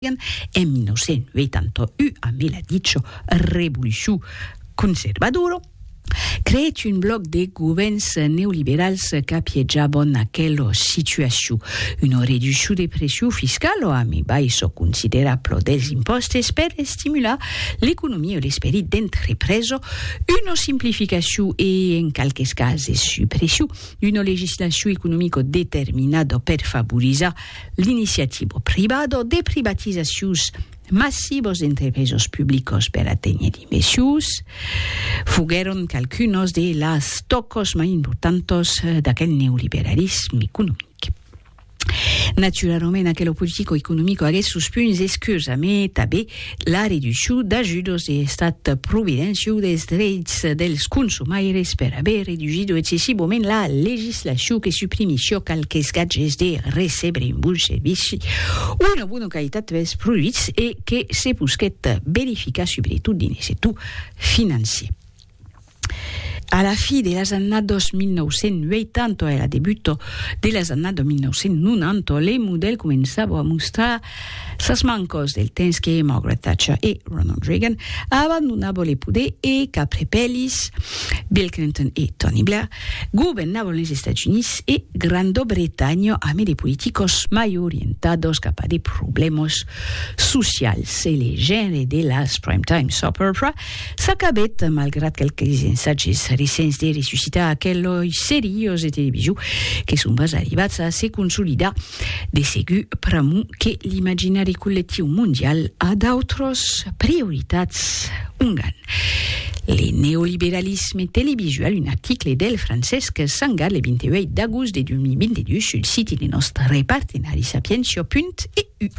En 1981, a me la dicho revolucion conservadora, creèt un blòc de govèrns neoliberals qu'apiejabon aquela situacion. Una reduccion de pression fiscala a me baissa considerabla dels impòstes per estimular l'economia e l'esperit d'entrepresa, una simplificacion e, en qualques cases, suppression d'una legislacion economica determinada per favorizar L'iniciativo privado de privatizacions massivos d'entrepresos publicos per aténher d'invecius foguèron qualcunos de las tòcos mai importantos d'aquel neoliberalisme economic. Naturalament, aquelo politico-economico aguèt sos punts escurs, amé tabé La reduccion d'ajudos de l'estat providenciau dels dreits dels consumaires per aver reducido excessivament la legislacion que suprimissiá qualques gatges de recebre un bon servici o una bona qualitat pels produits e que se posquèt verificar subretot dins lo sector financier. A la fi de las annados 1980 e a la debuto de las annados 1990, le modèl començava a mostrar sas mancos del temps que Margaret Thatcher e Ronald Reagan abandonava le poder e qu'aprepèlis Bill Clinton e Tony Blair governavan les Estats Units e Granda Bretanha amé de politicos mai orientados cap a de problèmas socials e le genre de las Prime Time Soap Opera S'acabèt, malgrat qualques ensatges recents de ressuscitar aqueloi seriós de televisio que son pas arribats a se consolidar, de segur pr'amor que l'imaginari collectiu mondial a d'autras prioritats. Ongan le neoliberalisme televisual, un article del Francesc Sangar le 28 d'agost de 2022 sul siti de nòstre partenari sapientia.eu.